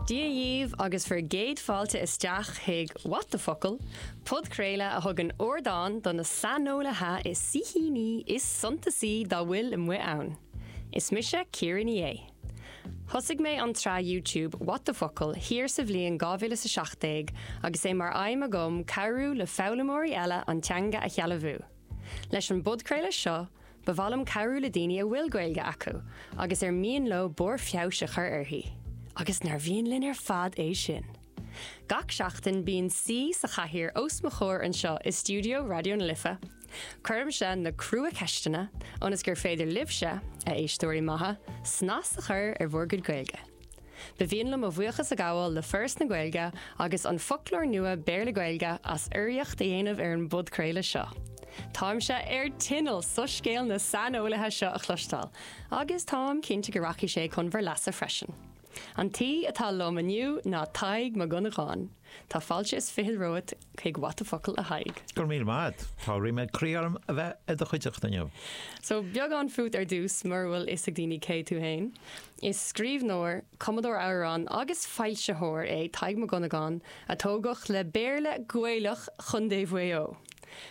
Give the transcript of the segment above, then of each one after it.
Dia dhíbh agus bhur gcéad fáilte isteach chuig What the Focal! podchraoladh a thugann ardán do na saineolaithe is saoithíní is suntasaí dá bhfuil amuigh ann. Is mise Ciara Ní É. Thosaigh mé an tsraith YouTube What the Focal! thiar sa bhliain 2017 agus é mar aidhm agam cabhrú le foghlaimeoirí eile an teanga a shealbhú. Leis an bpodchraoladh seo, Ba mhaith liom cabhrú le daoine a bhfuil Gaeilge acu agus ar mian leo barr feabhais a chur uirthi, agus nár mhian linn ar fad é sin! Gach seachtain bíonn saoi sa chathaoir os mo chomhair anseo i stiúideo Raidió na Life. Cuirimse na crua-cheisteanna ionas gur féidir libhse, a éisteoirí maithe, snas a chur ar bhur gcuid Gaeilge. Ba mhian liom mo bhuíochas a ghabháil le Foras na Gaeilge agus An Foclóir Nua Béarla-Gaeilge as urraíocht a dhéanamh ar an bpodchraoladh seo. Táimse ar tinneall soiscéal na saineolaithe seo a chloisteáil, agus táim cinnte go rachaidh sé chun bhur leasa freisin. An t-aoi atá liom inniu ná Tadhg Mac Dhonnagáin. Tá fáilte is fichead romhat chuig What the Focal, a Thaidhg! Go raibh míle maith a't. Tá ríméad croí orm a bheith i do chuideachta inniu. So, beagán fút ar dtús, mura bhfuil fhios ag daoine cé tú fhéin. Is scríbhneoir, cumadóir amhrán agus foilsitheoir é Tadhg Mac Dhonnagáin a tógadh le Béarla Gaelach Chontae Mhaigh Eo.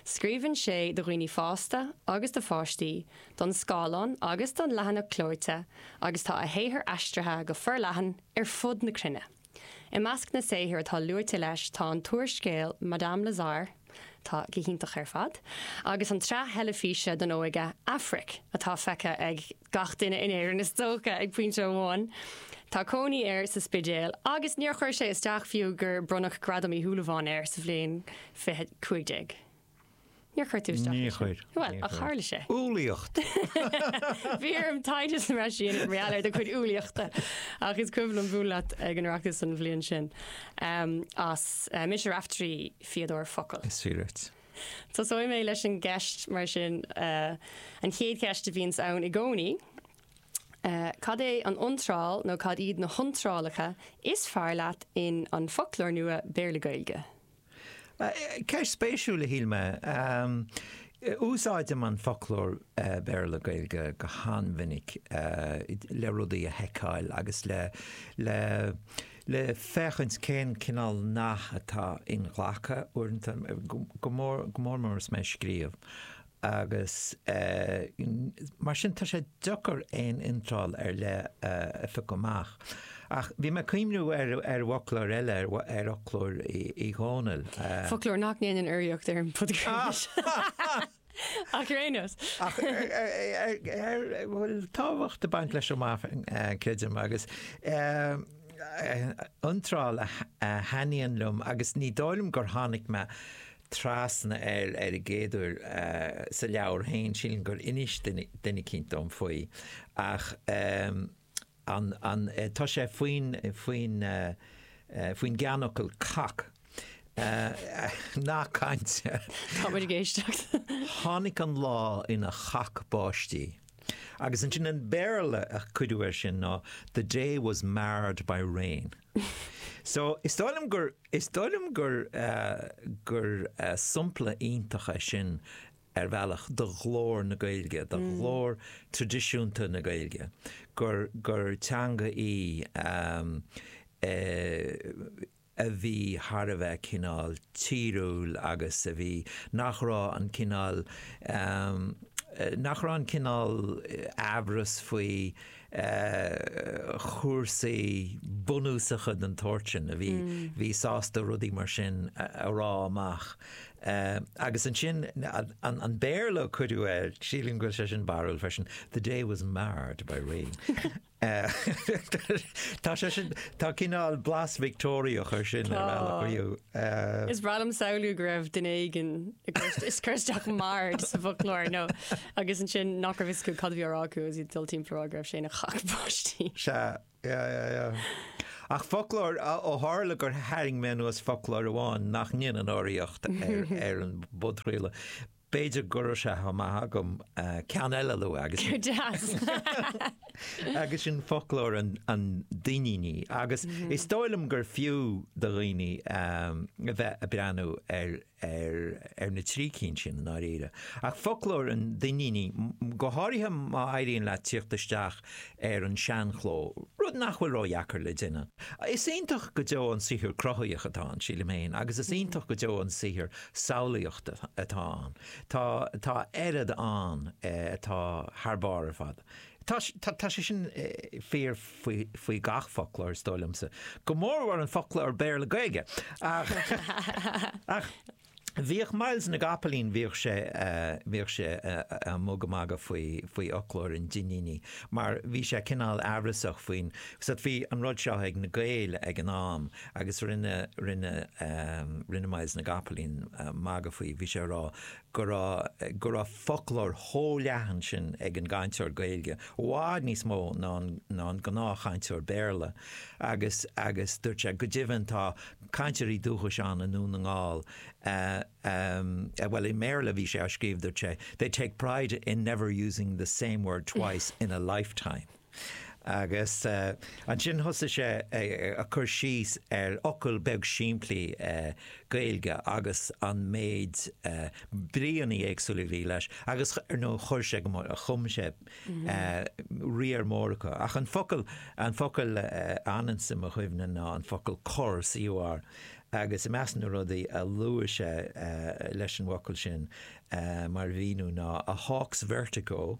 Scríobhann sé do dhaoine fásta agus do pháistí, don scáileán agus don leathanach clóite agus tá a shaothar aistrithe go forleathan ar fud na cruinne. I measc na saothar atá luaite leis tá an t-úrscéal Madame Lazare, atá go hiontach ar fad, agus an tsraith theilifíse don óige Aifric, atá feicthe ag gach duine in Éirinn is dócha ag pointe amháin. Tá cónaí air sa Spidéal agus níor chuir sé isteach fiú gur bronnadh Gradam Uí Shúilleabháin air sa bhliain 2015. Níor chuir tú isteach. Níor chuir. Bhuel, ach tharla sé. Umhlaíocht! Bhí orm taighde a dhéanamh mar sin mar gheall ar do chuid umhlaíochta, ach is cuimhin liom bualadh leat ag an Oireachtas an bhliain sin as Mise Raiftearaí, fíodóir focal. Is fíor duit. Tosóidh mé leis an gceist mar sin, an chéad cheist a bhíonns ann i gcónaí, cad é an iontráil nó cad iad na hiontrálacha is fearr leat in An Foclóir Nua Béarla-Gaeilge? Ceist spéisiúil a shíl mé. Úsáidim an foclóir Béarla Gaeilge go han-mhinic le rudaí a sheiceáil agus le le le féachaint cén cineál nath atá inghlactha uaireanta, go mór go mór mór is mé ag scríobh. agus mar sin tá sé deacair aon iontráil ar leith a phiocadh amach. Ach bhí mé ag cuimhniú ar fhoclóir eile, ar fhoclóir Uí Dhónaill. Foclóir nach ndéanann urraíocht ar an bpodchraoladh seo ach ar aon nós. Ach a bhfuil tábhacht ag baint leis amach, creidim, agus iontráil a thaitníonn liom agus ní dóigh liom gur tháinig mé trasna air ar an gcéad uair sa leabhar féin, sílim gur inis duine eicínt dom faoi, ach tá sé faoin gceannfhocal cac. Nath cainte. Tá muid ag éisteacht. Tháinig an lá ina chac báistí. Agus ansin an Béarla a cuireadh air sin ná The day was marred by rain. So, is dóigh liom gur, is dóigh liom gur, gur sompla iontach é sin ar bhealach do ghlór na Gaeilge, do ghlór tradisiúnta na Gaeilge, gur, gur teanga í a bhí thar a bheith cineál tíriúil agus a bhí, nach raibh an cineál, nach raibh an cineál amhras faoi, chúrsaí bunúsacha den tsórt sin a bhí bhí sásta rudaí mar sin a rá amach. Agus ansin an Béarla a cuireadh air, sílim go bhfuil sé sin barrúil freisin, 'The day was marred by rain'. Tá sé sin, tá cineál blas Victeoiriach ar sin ar bhealach. Tá. Is breá liom a shamhlú go raibh duine éigin ag cur isteach 'marred' sa bhfoclóir nó. Agus ansin nach raibh fhios acu cad a bhí á rá acu agus iad ag dul timpeall a rá go raibh sé ina chac báistí. Sea, yeah, yeah, yeah. Ach foclóir ó tharla gur tharraing mé anuas foclóir amháin nach ndéanann urraíocht ar an bpodchraoladh. B'fhéidir go raibh sé chomh maith agam ceann eile a lua agus. Go deas! agus sin foclóir an Duinnínigh. Agus is dóigh liom gur fiú do dhaoine a bheith ag breathnú ar ar ar na trí cinn sin i ndáiríre. Ach foclóir an Duinnínigh, go háirithe má éiríonn leat tíocht isteach ar an seanchló, rud nach bhfuil ró-dheacair le déanamh. Is iontach go deo an saothar cruthaitheach atá ann, sílim féin, agus is iontach go deo an saothar samhlaíochta atá ann. Tá oiread ann atá thar barr ar fad. Tá sé sin fíor faoi gach foclóir, is dóigh liomsa, go mórmhór an foclóir Béarla-Gaeilge. Ach bhíodh Myles na gCapaillín, bhíodh sé ag magadh, magadh faoi fhoclóir an Duinnínigh mar bhí sé cineál amhrasach faoin, bhí an rud seo ag na Gaeil ag an am agus rinne Myles na gCapaillín magadh faoi, bhí sé ag rá, go raibh, go raibh foclóir chomh leathan sin ag an gcainteoir Gaeilge, i bhfad níos mó ná an, ná an gnáthchainteoir Béarla agus, agus dúirt sé, go deimhin tá cainteoirí dúchais ann i nDún na nGall a, a, a, bhuel i mBéarla a bhí sé á scríobh dúirt sé, they take pride in never using the same word twice in a lifetime. Agus ansin thosaigh sé ag cur síos ar fhocal beag simplí Gaeilge agus an méid bríonnaí éagsúla a bhí leis agus ar ndóigh chuir sé go mór, chum sé riar mór acu. Ach an focal, an focal a fhananns i mo chuimhne ná an focal cor, C-o-r, agus i measc na rudaí a luaigh sé leis an bhfocal sin mar mhíniú ná 'a hawk's vertigo,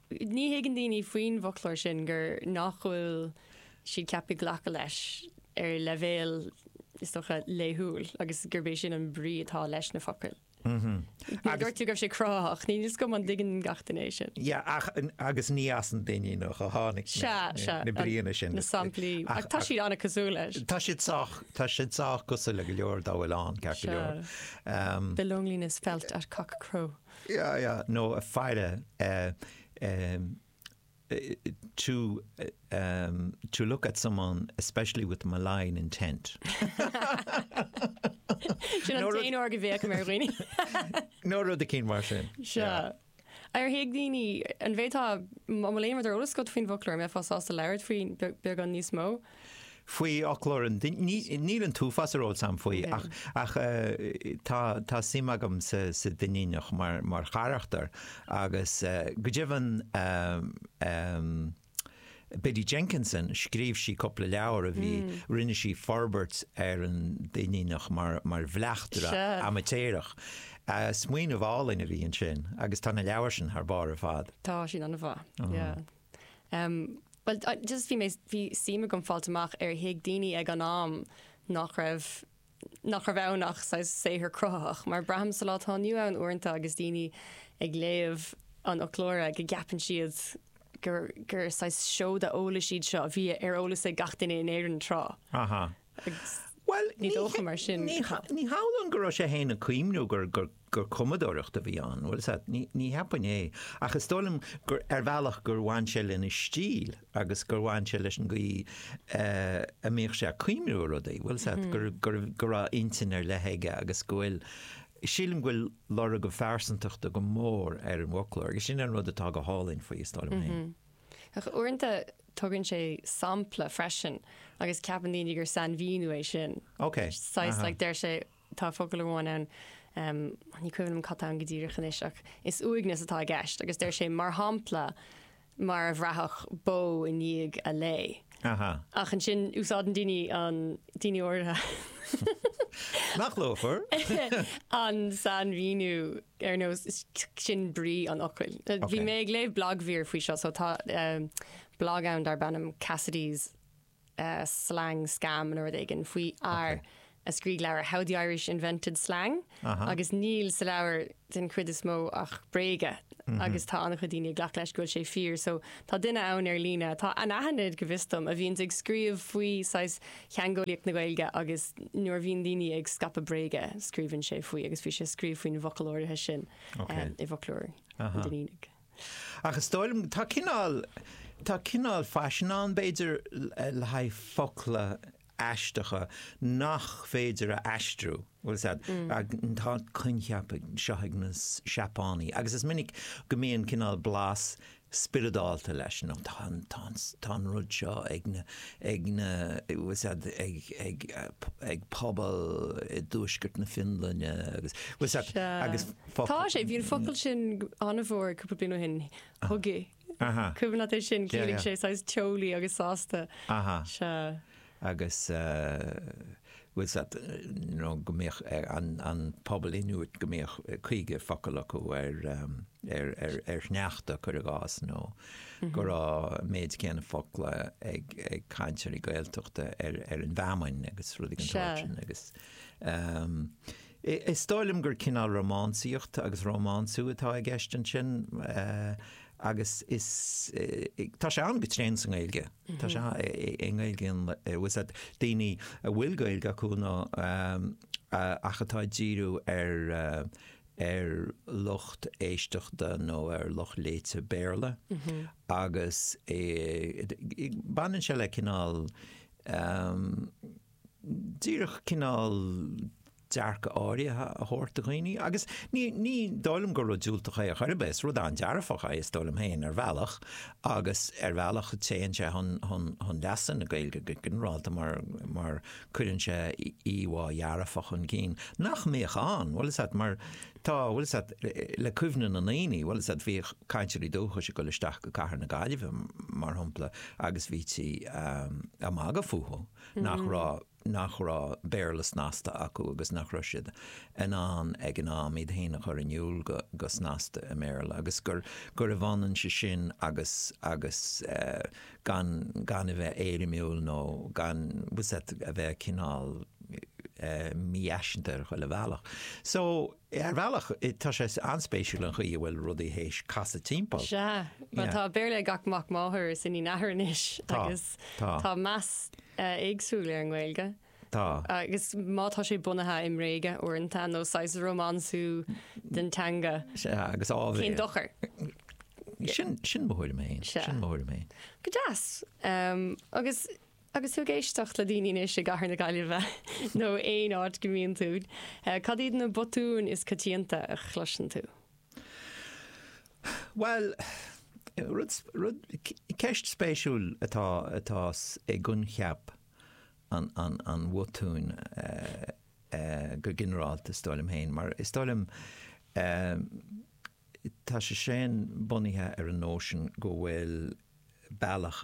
Ní thuigeann daoine faoin bhfoclóir sin gur nach bhfuil siad ceaptha glacadh leis ar leibhéal, is dócha, laethúil agus gurb é sin an brí atá leis na focail. Mar a dúirt tú, go raibh sé cruthaitheach, níl a fhios agam an dtuigeann gach duine é sin. Yeah, ach, agus ní as an Duinníneach a tháinig na bríonna sin. Na samplaí, ach tá siad an-chosúil leis. Tá siad sách, tá siad sách cosúil le go leor dá bhfuil ann, ceart go leor. Um, the loneliness felt at cockcrow. nó a faire to to look at someone especially with malign intent. Sin an t-aon uair go bhféachaim ar dhaoine. nó rud a cinn mar sin. Sea. Ar thuig daoine, an méid atá ar eolas agat faoin bhfoclóir, an mbeifeá sásta labhairt faoi, beagán níos mó. faoi fhoclóir an Duinnínigh. Níl an t-uafás ar eolas agam faoi ach tá suim agam sa Duinníneach mar charachtar agus go deimhin Biddy Jenkinson, scríobh sí cúpla leabhar a bhí, rinne sí forbairt ar an Duinníneach mar bhleachtaire amaitéarach. Smaoineamh álainn a bhí ansin agus tá na leabhair sin thar barr ar fad. Tá siad an-mhaith. Bhuel, just bhí mé, bhí suim agam fáil amach ar thuig daoine ag an am nach raibh, nach raibh ann ach saghas saothar cruthaitheach, mar braithim sa lá atá inniu ann uaireanta agus daoine ag léamh an fhoclóra go gceapann siad gur, gur saghas seoda eolais iad seo a bhí ar eolas ag gach duine in Éirinn tráth. agus ní dócha mar sin. Ní hamhlaidh go raibh sé fhéin ag cuimniú gur cumadóireacht a bhí ann, an bhfuil a fhios agat, ní cheapfainn é, ach is dóigh liom gur ar bhealach gur bhain sé lena stíl agus gur bhain sé leis an gcaoi a mbíodh sé ag cuimniú ar rudaí, an bhfuil a fhios agat, go raibh intinn ar leith aige agus go bhfuil, sílim go bhfuil lorg a phearsantachta go mór ar an bhfoclóir agus sin an rud atá go hálainn faoi, is dóigh liom fhéin. Ach uaireanta tugann sé sampla freisin agus ceapann daoine gur sainmhíniú é sin. Ok, saghas like deir sé, tá focal amháin ann, ní cuimhin liom cad tá ann go díreach anois, ach is uaigneas atá i gceist agus deir sé mar shampla mar a bhraithfeadh bó i ndiaidh a lao. Ach ansin úsáideann daoine an, daoine, uh, an sainmhíniú ar nós sin brí an fhocail. Bhí mé ag léamh blagmhír faoi seo, so tá blag ann darb ainm Cassidy Slang Scam nó rud éigin faoi fhear a scríobh leabhar How the Irish Invented Slang agus níl sa leabhar den chuid is mó ach bréaga agus tá an-chuid daoine ag glacadh leis go bhfuil sé fíor. So tá duine ann ar líne atá anaithnid go bhfios dom a bhíonns ag scríobh faoi saghas theangeolaíocht na Gaeilge agus nuair a bhíonn daoine ag scaipeadh bréaga scríobhann sé faoi agus bhí sé ag scríobh faoin bhfocal áirithe sin i bhfoclóir an Duinnínigh. Ach is dóigh liom tá cineál tá cineál faisean ann b'fhéidir le haghaidh focla aisteacha nach féidir a aistriú. Bhfuil a fhios agat, tá coincheap seo ag na Seapánaigh agus is minic go mbíonn cineál blas spioradálta leis, nó tá an, tá an, tá an rud seo ag na, ag na, bhfuil a fhios agat, ag, ag, ag pobal i dtuaisceart na Fionlainne agus, bhfuil a fhios agat, agus focail. Tá sé, bhí an focal sin an-mhór cúpla bliain ó shin, hygge. An cuimhin leat é sin, chiallaigh sé saghas teolaí agus sásta sea. Agus bhfuil a fhios agat nó go mbíodh an pobal Ionúiteach go mbíodh caoga focal acu ar shneachta cuir i gcás nó go raibh an méid céanna focla ag cainteoirí Gaeltachta ar an bhfeamainn agus rudaí den tsórt sin agus Is dóigh liom gur cineál rómánsaíocht agus rómánsú atá i gceist ansin agus is, tá sé ann go tréan sa nGaeilge, tá sé i nGaeilge bhfuil a fhios agat, daoine a bhfuil Gaeilge acu nó ach atá ag díriú ar, ar lucht éisteachta nó ar lucht léite Béarla agus baineann sé le cineál, díreach cineál dearcadh áirithe a thabhairt do dhaoine agus ní, ní dóigh liom gur rud diúltach é ar chor ar bith, is rud an-dearfach é is dóigh liom féin ar bhealach agus ar bhealach téann sé chun, chun, chun leasa na Gaeilge go ginearálta mar, mar cuireann sé íomhá dhearfach chun cinn nach mbeadh ann, bhfuil a fhios agat mar tá, bhfuil a fhios agat le cuimhne na ndaoine, bhfuil a fhios agat bhíodh cainteoirí dúchais ag dul isteach go cathair na Gaillimhe mar shampla agus bhítí ag magadh fúthu. nach raibh nach raibh Béarla snasta acu agus nach raibh siad in ann ag an am iad féin a chur in iúl go go snasta i mBéarla agus gur gurbh ionann sé sin agus agus gan gan a bheith éirimiúil nó gan a bheith cineál mífhaiseanta ar chuile bhealach. So, Ar bhealach tá sé an-spéisiúil an chaoi a bhfuil rudaí théis casadh timpeall. Sea. Bhuel tá Béarla ag gach mac máthar is iníon athar anois is tá meas éagsúil ar an nGaeilge. Tá. Agus má tá sé bunaithe i mbréaga uaireanta nó saghas rómánsú den teanga. Sea agus áibhéil. Cén dochar? Sin mo thuairim fhéin. Sin mo thuairim fhéin. Go deas. Agus Agus tú ag éisteacht le daoine anois i gcathair na Gaillimhe nó aon áit go mbíonn tú, cad iad na botúin is coitianta a chloiseann tú? Bhuel, rud, rud, ceist spéisiúil atá, atá i gcoincheap an, an, an bhotúin go ginearálta is dóigh liom féin, mar is dóigh liom tá sé sin bunaithe ar an nóisean go bhfuil bealach,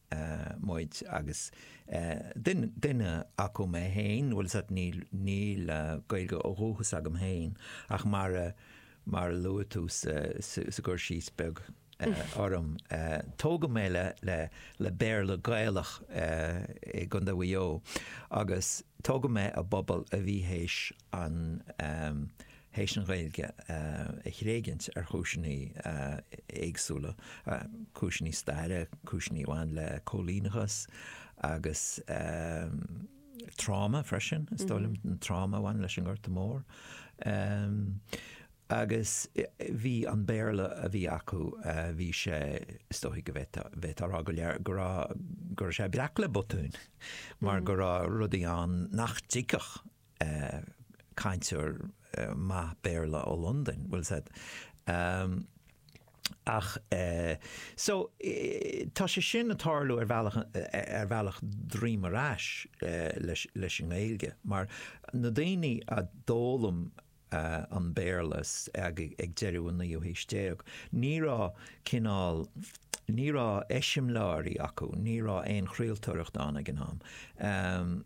muid agus duine acu mé féin, bhuel níl Gaeilge ó dhúchas agam féin ach mar a, mar a luaigh tú sa gcur síos beag orm, tógadh mé le Béarla Gaelach i gContae Mhaigh Eo agus tógadh mé i bpobal a bhí théis an théis an Ghaeilge a thréigint ar chúiseanna éagsúla, cúiseanna staire, cúiseanna a bhain le cóilíneachas agus tráma freisin, is dóigh liom, an tráma a bhain leis an nGorta Mór. Agus bhí an Béarla a bhí acu, bhí sé, is dóigh go bhféadfá, bhféadfá a rá go, go raibh, go raibh sé breac le botúin mar go raibh rudaí ann nach dtuigfeadh cainteoir maith Béarla ó Londain, bhfuil's agat, em, ach eh, so tá sé sin ag tarlú ar bhealach, ar bhealach droim ar ais leis an nGaeilge mar na daoine a d'fhoghlaim an Béarla ag deireadh an naoú haois déag. Ní raibh, cineál, ní raibh eiseamláirí acu, ní raibh aon chraoltóireacht ann ag an am.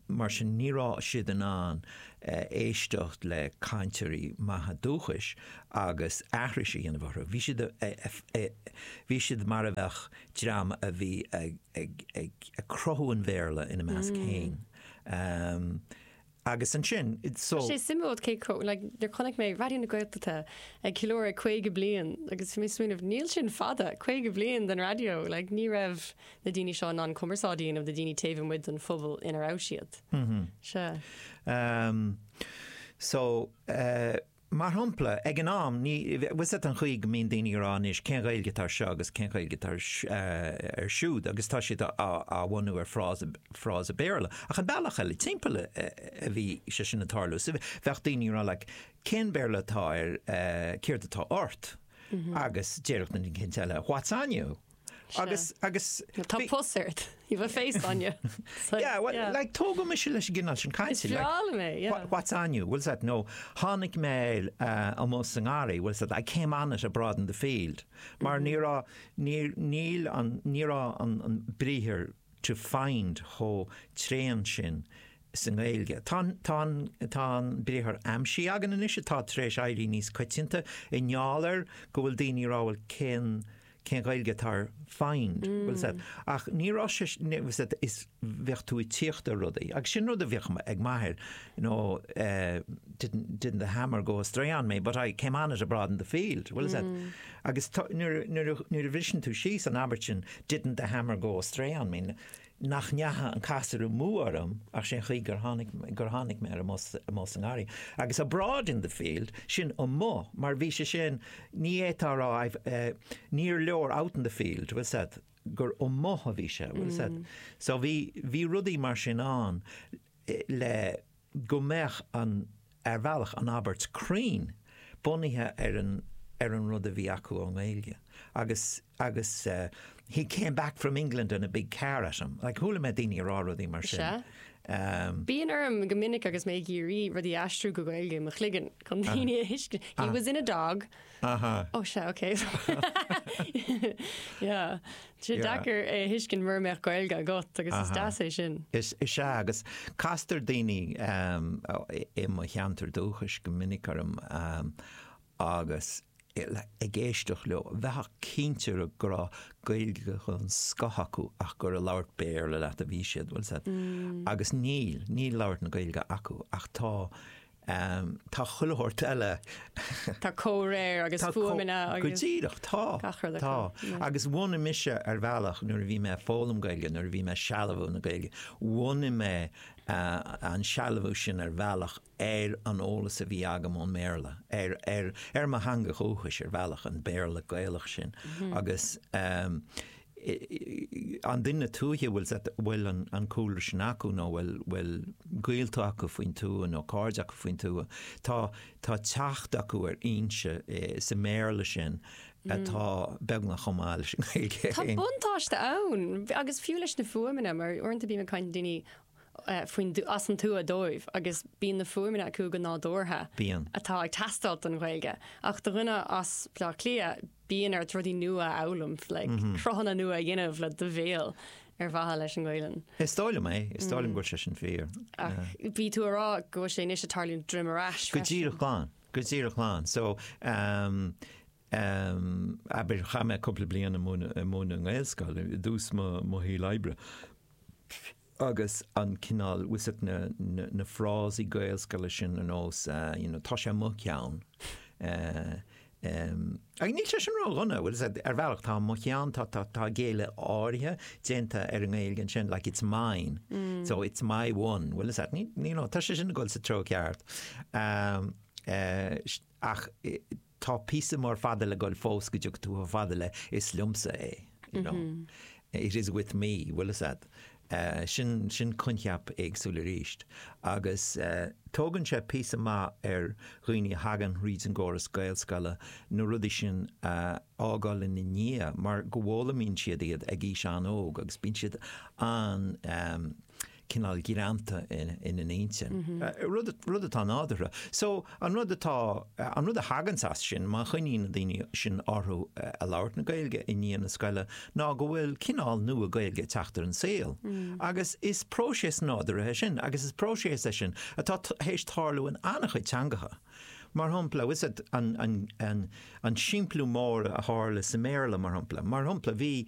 Mar sin ní raibh siad in ann éisteacht le cainteoirí maithe dúchais agus aithris a dhéanamh orthu. Bhí siad, bhí siad mar a bheadh dream a bhí ag cruthú an Bhéarla ina measc féin. Agus ansin, so. Tá sé suimiúil, cé chomh, like, nuair chonaic mé Raidió na Gaeltachta ag ceiliúradh 50 bliain agus bhí mé ag smaoineamh, níl sin fada, 50 bliain den raidió, like, ní raibh na daoine seo in ann cumarsáid a dhéanamh le daoine taobh amuigh den phobal ina raibh siad. Sea. Umm, so, eh. Mar shompla, ag an am, ní, bhfuil a fhios agat an chaoi go mbíonn daoine a rá anois cén Ghaeilge atá ar seo agus cén Ghaeilge atá ar, ar siúd agus tá siad á, á bhunú ar frása, frása Béarla. Ach an bealach eile timpeall a bhí sé sin ag tarlú. So bheadh daoine ag rá like cén Béarla atá ar, céard atá ort? Agus déarfadh an cainteoir eile what's on you? Agus, agus... Tá pus ort. You've a face on you. Yeah, well, like, tógadh mise leis an gcineál sin cainte. Is breá liom é, yeah. What's on you? Bhfuil a fhios agat, nó, tháinig mé air amuigh sa ngarraí, bhfuil a fhios agat, I came on it abroad in the field. Mar ní raibh, níor, níl an, ní raibh an, an briathar to find chomh tréan sin sa nGaeilge. Tá an, tá an, tá an briathar aimsigh againn anois atá tar éis éirí níos coitianta i ngeall ar go bhfuil daoine a rá, bhuel, cén, cén Ghaeilge atá ar find? Bhfuil a fhios agat, ach ní raibh sé, bhfuil a fhios agat, bhíodh tú ag tíocht ar rudaí. Agus sin rud a bhíodh ag m'athair, you know, eh, didn't, didn't the hammer go astray on me, but I came on it abroad in the field. Bhfuil a fhios agat, agus tá, nuair a, nuair a, nuair a bhriseann tú síos an abairt sin, didn't the hammer go astray on me, nach ndeacha an casúr amú orm ach sé'n chaoi gur tháinig, gur tháinig mé air amuigh, amuigh sa ngarraí agus abroad in the field, sin amuigh mar bhí sé sin, ní fhéadfá a rá, eh, níor leor out in the field, bhfuil a fhios agat, gur amuigh a bhí sé, bhfuil a fhios agat. So bhí, bhí rudaí mar sin ann le, go mbeadh an, ar bhealach, an abairt cruinn bunaithe ar an, ar an rud a bhí acu ón nGaeilge agus, agus he came back from England and a big car at him. Like, chuala mé daoine ag rá rudaí mar sin. Is ea. Bíonn orm go minic agus mé ag iarraidh rudaí a aistriú go Gaeilge i mo chloigeann chun daoine a thuiscint. He has in a dog. Aha. Oh sea ok yeah tá sé deacair é a thuiscint mura mbeadh Gaeilge agat agus is deas é sin. Is ea agus castar daoine i mo cheantar dúchais go minic orm agus ag éisteacht leo bheifeá cinnte go raibh Gaeilge den scoth acu ach gur ag labhairt Béarla leat a bhí siad bhfuil a fhios agat agus níl, níl labhairt na Gaeilge acu ach tá Ehm, tá chuile shórt eile. Tá comhréir agus fuaimeanna agus. Go díreach, tá. Tá. Agus bhunaigh mise ar bhealach nuair a bhí mé ag foghlaim Gaeilge, nuair a bhí mé ag sealbhú na Gaeilge, bhunaigh mé eh, an sealbhú sin ar bhealach ar an eolas a bhí agam ón mBéarla, ar, ar, ar mo theanga dhúchais ar bhealach, an Béarla Gaelach sin. Mhm. Agus eh, an duine tuaithe a bhfuil a bhfuil an cúlra sin acu nó bhfuil bhfuil gaolta acu faoin tuath nó cairde acu faoin tuath tá tá teacht acu ar fhoinse sa mBéarla sin atá beagnach chomh maith leis an Ghaeilge. Tá buntáiste ann agus fiú leis na fuaimeanna mar uaireanta bíonn caint daoine faoin as an tuath dóibh agus bíonn na fuaimeanna acu go nádúrtha Bíonn. atá ag teastáilt don Ghaeilge. Ach do dhuine as Baile Átha Cliath, bíonn ort rudaí nua a fhoghlaim, like cruthanna nua a dhéanamh le do bhéal ar mhaithe leis an nGaeilge. Is dóigh liom é, is dóigh liom go bhfuil sé sin fíor. Ach bhí tú a rá go bhfuil sé anois ag tarlú droim ar ais freisin. Go díreach glan, go díreach glan. So, Am, abair, chaith mé cúpla bliain ag múineadh i nGaelscoil i dtús mo shaoil oibre agus an cineál, fiú is na frásaí Gaelscoile sin ar nós you know tá sé mo cheann, ach níl sé sin ró-dhona, bhuel, ar bhealach tá mo cheann, tá géilleadh áirithe déanta ar an nGaeilge ansin, like it's mine, so it's my one, bhuel, tá sé sin ag dul sa treo ceart. ach tá píosa mór fada le dhul fós go dtiocfaidh tú chomh fada le 'is liomsa é', you know. It is with me, bhfuil 'fhios a'd. Sin, sin coincheap éagsúil arís agus tógann sé píosa maith ar dhaoine a thagann thríd an gcóras Gaelscoile na rudaí sin a fhágáil ina ndiaidh mar go bhfoghlaimíonn siad iad ag aois an-óg agus bíonn siad an-, cineál greanta ina n-intinn. Rud atá nádúrtha. So, an rud atá, an rud a thaganns as sin, má choinníonn na daoine sin orthu ag labhairt na Gaeilge i ndiaidh na scoile, ná go bhfuil cineál nua Gaeilge ag teacht ar an saol. Agus is próiseas nádúrtha é sin, agus is próiseas é sin atá théis tarlú in an-chuid teangacha. Mar shampla, bhfuil 'fhios a'd an simpliú mór a tharla sa mBéarla, mar shampla. Mar shampla, bhí.